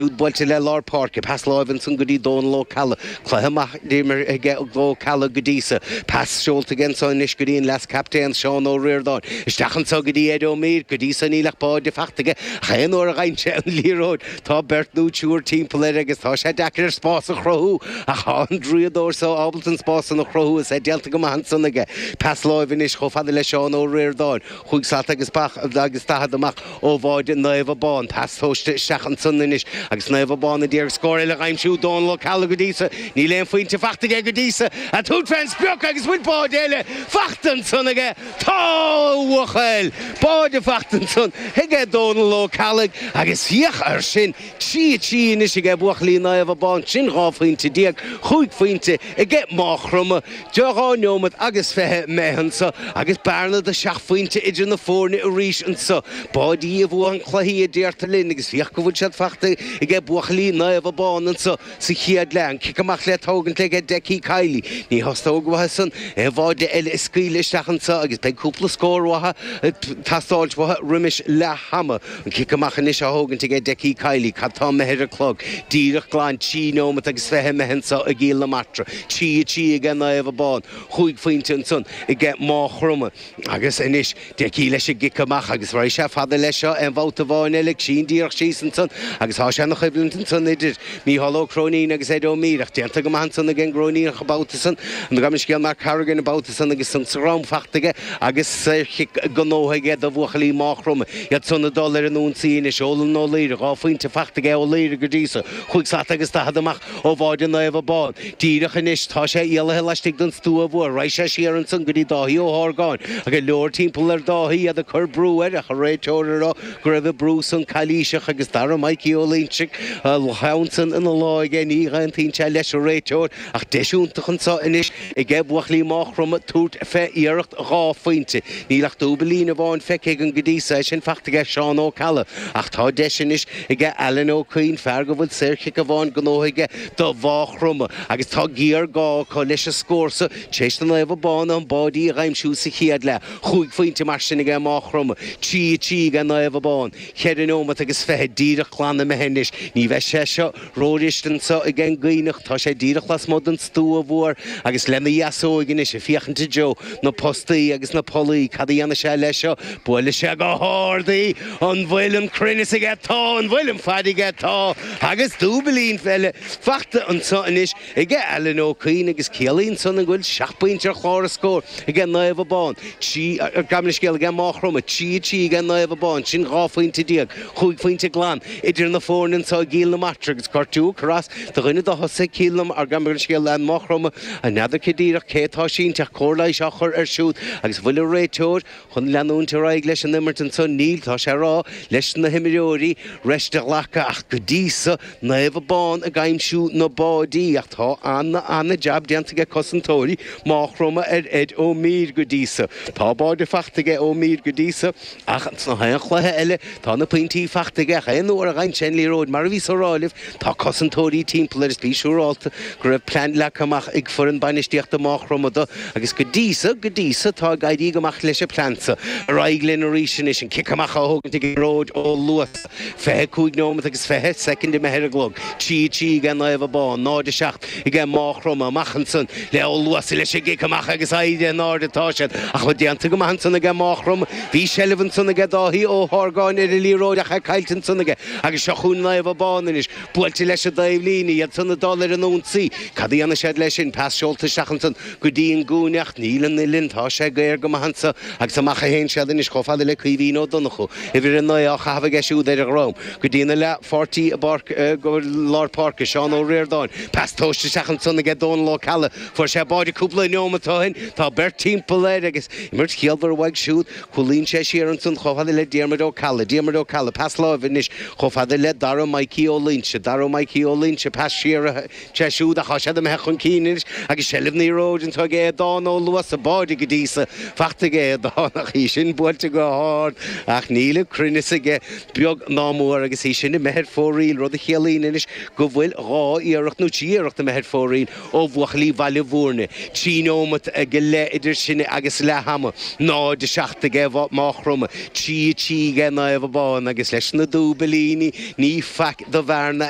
buailte le lár páirce, pas láimh ansan go dtí Dónal Ó Ceallaigh, cluiche an-mhaith imirthe aige Ó Ceallaigh go dtí so, pas seolta aige ansan anois go dtí an leas captaen Seán Ó Riordáin, isteach ansan go dtí Ed Ó Mír, go dtí so níl ach báide fachta aige ach aon uair a gheibheann sé an liathróid tá beirt nó triúr timpeall air agus tá sé deacair air spás a chruthú ach tá an draíodóir so ábalta an spás san a chruthú is é déanta go maith ansan aige, pas láimh anois chomh fada le Seán Ó Riordáin, chúig slat agus ba agus daichead amach. ó bháide Naomh Abán, pas tomhaiste isteach ansan anois agus Naomh Abán a d'iarraidh scór eile a dh'aimsiú, Dónal Ó Ceallaigh go dtí so, níl aon phointe fachta aige go dtí so, ag tabhairt fén sprioc agus bhfuil báide eile fachta ansan aige, tá a bhuachaill, báide fachta ansan aige Dónal Ó Ceallaigh agus féach air sin, Trí a trí anois aige buachaillí Naomh Abán, sin 12 phointe, cúig phointe aige Máigh Chromtha, dhá neomat agus 20 imithe anso, agus bearna de seacht phointe idir na foirne arís anso. Báidí a bhuann cluichí a deirtear linn agus féach go bhfuil siad fachta aige Buachaillí Naomh Abán anso. Sa chéad leath, an cic amach le tógaint aige Deccie Kiely. Ní theastóidh uathu san aon bháide eile a scaoileadh isteach anso agus beidh cúpla scór uathu ag teastáilt uathu roimis leath ama. An cic amach anois á thógaint aige Deccie Kiely cad tá imithe ar an gclog. Díreach glan trí neomat agus fiche imithe anso i gCill na Martra. Trí a trí aige Naomh Abán. Chúig phointe ansan aige Máigh Chromtha. Agus anois, Deccie leis an gcic amach agus raghaidh sé fada leis seo, aon bhabhta amháin eile aige sin díreach síos ansan agus tá sé ina choimhlint ansan idir Micheál Ó Cróinín agus Ed Ó Mír ach déanta go maith ansan ag an gCróiníneach an babhta san, nó gabh mo leithscéal Mark Corrigan an babhta san agus sonc sa drom fachta aige agus saorchic gnóthaithe aige do bhuachaillí Máigh Chromtha, iad san ag dul ar an ionsaí anois. Eolan Ó Laoire, dhá phointe fachta aige, Ó Laoire go dtí so chúig slat agus daichead amach. Ó bháide Naomh Abán. Díreach anois tá sé éalaithe laistigh den stua mhuar. Raghaidh sé siar ansan go dtí Dáithí Ó hArgáin. Go leor timpeall ar Dháithí, iad ag cur brú air, ach an réiteoir a rá go raibh an brú san calaoiseach agus Dara Mikey Ó Loingsigh, a cheann san ina lámh aige, ní aontaíonn sé leis an réiteoir. Ach deis iontach anso anois aige buachaillí Máigh Chromtha tabhairt fé iarracht dhá phointe. Níl ach dúbaillín amháin feicthe againn go dtí so, is é sin fachta aige Seán Ó Ceallaigh. Ach tá deis anois. aige Alan Ó Cuinn, fear go bhfuil saorchic amháin gnóthaithe aige do Mhagh Chromtha agus tá géarghá acu leis an scór so tar éis do Naomh Abán na báidí a dh'aimsiú sa chéad leath. Chúig phointe mar sin aige Mágh Chromtha, 3-3 aige Naomh Abán, cheithre neomat agus fiche díreach glan imithe anois. Ní bheidh sé seo ró-fhuirist anso aige an gCuinneach, tá sé díreach lasmuigh den stua mhuar agus lena dheasóig anois ag féachaint i dtreo na postaí agus na pollaí. Cad a dhéanfaidh sé léi seo? Buailfidh sé go hard í! An bhfuil an cruinneas aige? Tá. An bhfuil an fad aige? Tá. Agus dúbilín eile fachta anso anois aige Alan Ó Cuinn agus ciallaíonn san go bhfuil seacht bpointe ar chlár na scór aige Naomh Abán. Ní hea, gabh mo leithscéal, aige Máigh Chromtha. Trí a trí aige Naomh Abán. Sin dhá phointe déag. Chúig phointe glan idir na foirne anso i gCill na Martra agus gortú across do dhuine do thosaithe Cill na, gabh mo leithscéal, Máigh Chromtha. N'fheadar cé díreach cé atá sínte ach cóir leighis á chur air siúd agus an bhfuil an réiteoir, Chun leanúint ar aghaidh leis an imirt anso níl, tá sé ag rá leis na himreoirí, rest a ghlacadh ach go dtí so, Naomh Abán ag aimsiú na báidí ach tá ana ana jab déanta aige cosantóirí Máigh Chromtha ar Ed Ó Mír go dtí so. Tá báidí fachta aige Ó Mír go dtí so ach ins gach aon chluiche eile, Tá na pointí fachta aige ach aon uair a fhaigheann sé an liathróid. Mar a bhíos á rá libh, tá cosantóirí timpeall air is bí siúrálta go raibh plean leagtha amach ag foireann bainistíochta Máigh Chromtha dó agus go dtí so, go dtí so, tá ag éirí go maith leis an plean so. Ar aghaidh linn arís anois, an cic amach á thógaint ag Gearóid Ó Luasa. Fiche cúig neomat agus fiche soicind imithe ar an gclog. Trí a trí ag Naomh Abán, 0, 7. aige Máigh Chromtha amach ansan le Ó Luasa leis a' gcic amach agus éirí in airde atá siad. Ach marc déanta go maith ansan aige Máigh Chromtha, bhí seilbh ansan aige Dáithí Ó hArgáin ar a' liathróid ach é caillte ansan aige agus seo chúinn Naomh Abán anois, buailte leis a' dtaobh líne, iadsan a' dul ar an ionsaí, cad a dhéanfaidh siad leis sin, pas seolta isteach ansan go dtí an gcúinne ach níl an uillinn, tá sé géar go maith anso agus amach a théann siad anois chomh fada le Caoimhín Ó Donnchú, uimhir a naoi á chaitheamh aige siúd ar a dhroim. Go dtína leathpháirtí i bpáirc, i lár páirce, Seán Ó Riordáin. Pas tomhaiste isteach ansan aige Dónal Ó Ceallaigh. Fuair sé báide cúpla neomat ó shin. Tá beirt timpeall air agus imirt chiallmhar uaidh siúd. Cúlaíonn sé siar ansan chomh fada le Diarmuid Ó Ceallaigh. Diarmuid Ó Ceallaigh, pas láimhe anois chomh fada le Dara Maidhcí Ó Loingsigh. Dara Maidhcí Ó Loingsigh, pas siar. aige siúd ach tá siad imithe chun cinn anois agus seilbh na liathróide anso aige Aodán Ó Luasa, báide go dtí so fachta aige Aodán ach í sin buailte go hard ach níl an cruinneas aige beag ná mór agus í sin imithe ar fóraoil rud a chiallaíonn anois go bhfuil dhá iarracht nó trí iarracht imithe ar fóraoil ó bhuachaillí Bhaile Mhúirne. Trí neomat go leith idir sin agus leath ama. 0:07 aige Máigh Chromtha. 3:03 aige Naomh Abán agus leis na dúibilíní ní faic do bhearna é.